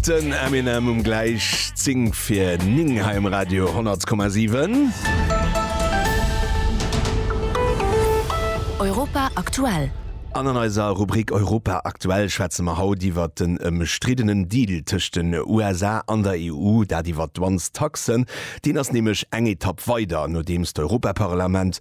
Den Eminem um gläich 10 fir 9 hei um Radio 100,7. Europa aktuell. An an eiser Rubrik Europa aktuell schwätze mer haut iwwert den ëmstriddenen Deal tëscht den USA an der EU, dat iwwert d'Dwangs-Taxen. Deen ass nämlech eng Etapp weider, nodeems d'Europaparlament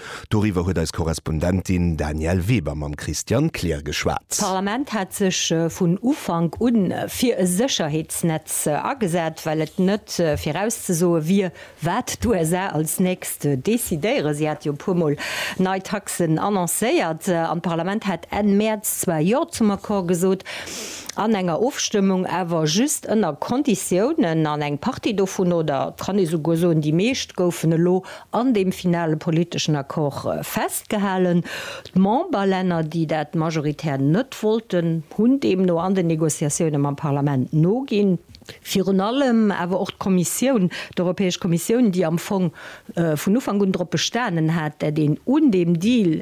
Doriwwer huet eis Korrespondentin Danièle Weber mam Christian Kleer geschwat. D'Parlament hat sech vun Ufank un fir e Sécherheetsnetz agesat, well et net virauszesoe wier, wat d'USA als nächst decidéieren. Si hate jo e puer Mol nei Taxen annoncéiert, an d'Parlament hat Enn Mäerz zwar Jo zum Accord gesot, an enger Ofstëmmung awer just ënner Konditiounen, an eng Partie dovun, oder et kann ee souguer soen, déi meescht, goufen elo an deem finale politeschen Accord festgehalen. D'Memberlänner, déi dat majoritär net wollten, hunn deemno an den Negociatioune mam Parlament noginn. Virun allem awer och d'Kommissioun, d'Europäesch Kommissioun, déi am Fong vun Ufank un drop bestanen hat, dat een un deem Deal,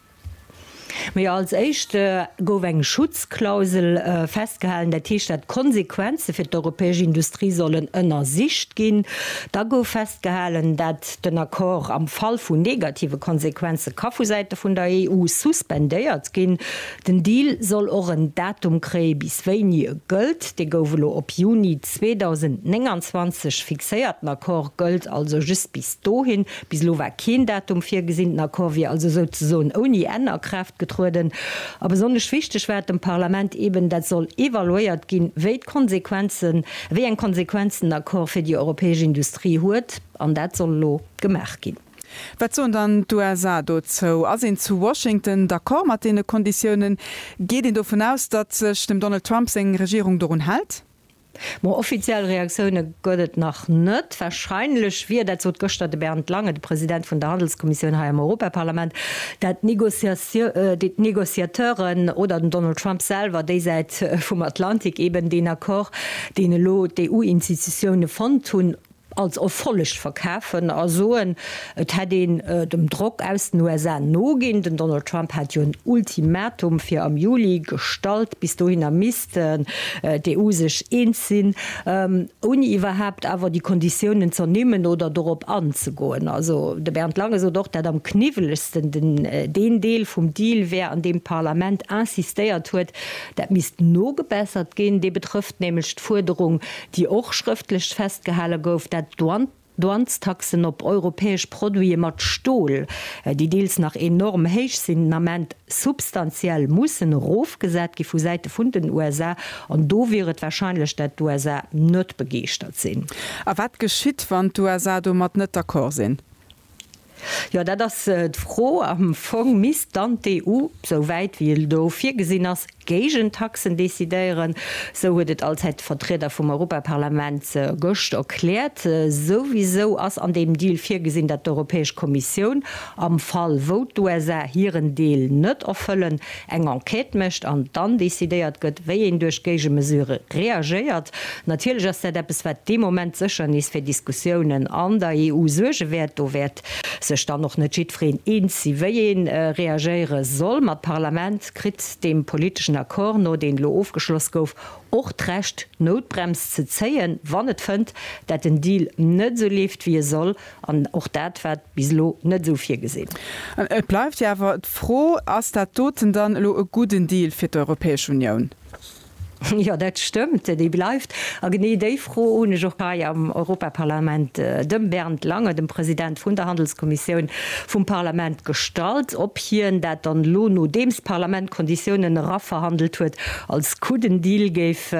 Mee als éischt gouf eng Schutzklausel festgehalen, dat heescht, dat d'Konsequenze fir d'europäesch Industrie sollen ënnersicht ginn. Da gouf festgehalen, dat den Accord am Fall vu negative Konsequenze ka vu Säite vun der EU suspendéiert ginn. Den Deal soll och en Datum kréie bis wéini e gëllt. Dee gouf elo op Juni 2029 fixéiert. Den Accord gëllt also just bis dohin. Bis elo war keen Datum virgesinn. Den Accord wier also souzesoen ouni Enn a Kraaft getrueden. A besonnesch wichteg war et dem Parlament eben, dat soll evaluéiert ginn, wéi d'Konsequenzen, wéi eng Konsequenzen den Accord fir déi europäesch Industrie huet. An dat soll elo gemaach ginn. Wat soen dann d'USA dozou? Ass een zu Washington d'accord mat deene Konditiounen? Geet een dovun aus, datt sech dem Donald Trump seng Regierung dorun hält? Ma offiziell Reaktioune gëtt et nach net. Warscheinlech wier, dat sot gëschter de Bernd Lange, de President vun der Handelskommissioun hei am Europaparlament, dat d'Negociateuren oder den Donald Trump selwer, déi Säit vum Atlantik, eben deen Accord, deen elo d'EU-Institutioune fonnt hunn, als Erfolleg verkafen a soen, et hätt een dem Drock aus den USA noginn. Den Donald Trump hat jo en Ultimatum fir am Juli gestallt. Bis dohinner misst d'EU sech eens sinn, ouni iwwerhaapt awer déi Konditiounen z'ernimmen oder dorop anzegoen. Also de Bernd Lange sot och, dat am kniwwelegsten deen Deel vum Deal wär, an deem d'Parlament insistéiert huet, dat misst nogebessert ginn. Dee betrëfft nämlech d'Fuerderung, déi och schrëftlech festgehale gouf, dat d'Douanestaxen op europäesch Produite mat Stol, déi deels nach enorm héich sinn, den Ament substantiell mussen erofgesat gi vu Säite vun den USA. An do wier et warscheinlech, dat d'USA net begeeschtert sinn. A wat geschitt, wann d'USA domat net d'accord sinn? Jo, dat ass d'Fro. Am Fong misst dann d'EU, sou wäit wéi et elo virgesinn ass, Géigentaxen decidéieren. Sou huet et allzäit de Vertrieder vum Europaparlament gëscht erkläert. Souwisou ass an deem Deal virgesinn, datt d'Europäesch Kommissioun, am Fall wou d'USA hiren Deel net erfëllen, eng Enquête mécht an dann decidéiert gëtt, wéi een duerch Géigemesure reagéiert. Natierlech ass dat eppes, wat dee Moment sécher nees fir Diskussiounen an der EU suerge wäert. Do wäert sech dann och net jiddwereen eens si wéi ee reagéiere soll. Ma d'Parlament kritt deem politeschen Accord no, deen elo ofgeschloss gouf, och d'Recht d'Noutbrems ze zéien, wann et fënnt, dat den Deal net esou leeft wéi e soll. An och dat war bis elo net esou virgesinn. Et bleift jo awer d'Fro, Ass dat doten dann elo e gudden Deal fir d'Europäesch Unioun? Jo, dat stëmmt, dee bleift. A genee déi Fro hunn ech och hei am Europaparlament dem Bernd Lange, dem President vun der Handelskommissioun vum Parlament, gestallt, ob hien dat dann elo, nodeems d'Parlament d'Konditiounen eraverhandelt huet, als gudden Deal géif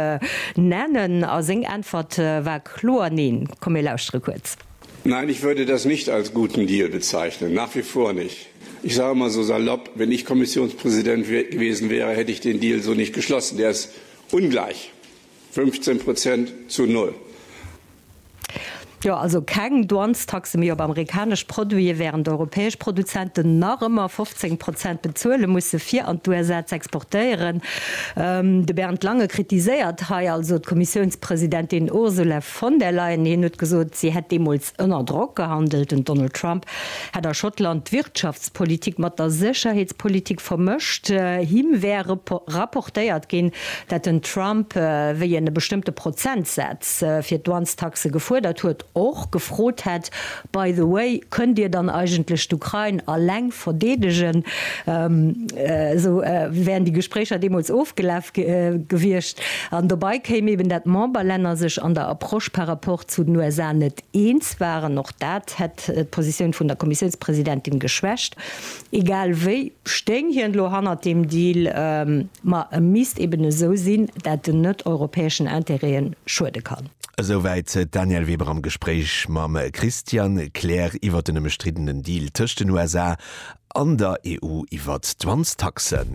nennen. A seng Äntwert war Kloer Neen. Komm mir lauschtere kuerz. Nein, ich würde das nicht als guten Deal bezeichnen, nach wie vor nicht. Ich sage mal so salopp, wenn ich Kommissionspräsident gewesen wäre, hätte ich den Deal so nicht geschlossen. Der ist ungleich, 15 Prozent zu null. Jo, also keng Douanestaxe méi op amerikanesch Produite, während europäesch Produzenten nach ëmmer 15 Prozent bezuele musse fir an d'USA z'exportéieren. De Bernd Lange kritiséiert hei also d'Kommissiounspräsidentschaft, Presidentin Ursula von der Leyen hien huet gesot, si hätt deemools ënner Drock gehandelt. Den Donald Trump hätt a Schottland d'Wirtschaftspolitik mat der Sécherheetspolitik vermëscht. Him wär rapportéiert ginn, dat den Trump wéi en e bestëmmte Prozentsaz fir d'Douanestaxe gefuerdert huet, och gefrot hätt, By the way, kënnt Dir dann eigentlech d'Ukrain alleng verdeedegen? Esou wären déi Gespréicher deemools ofgelaf gewiescht. An dobei kéim eben, dat d'Memberlänner sech an der Approche par rapport zu den USA net eens waren. Och dat hätt d'Positioun vun der Kommissiounspresidentin geschwächt. Egal wéi stéing hien elo hannert deem Deal, ma e misst eben esou sinn, dat en net europäeschen Interêten schuede kann. Esouwäit d'Danièle Weber am Gespréich mam Christian Klähr iwwer den ëmstriddenen Deal tëscht den USA an der EU iwwer d'Wanztaxen.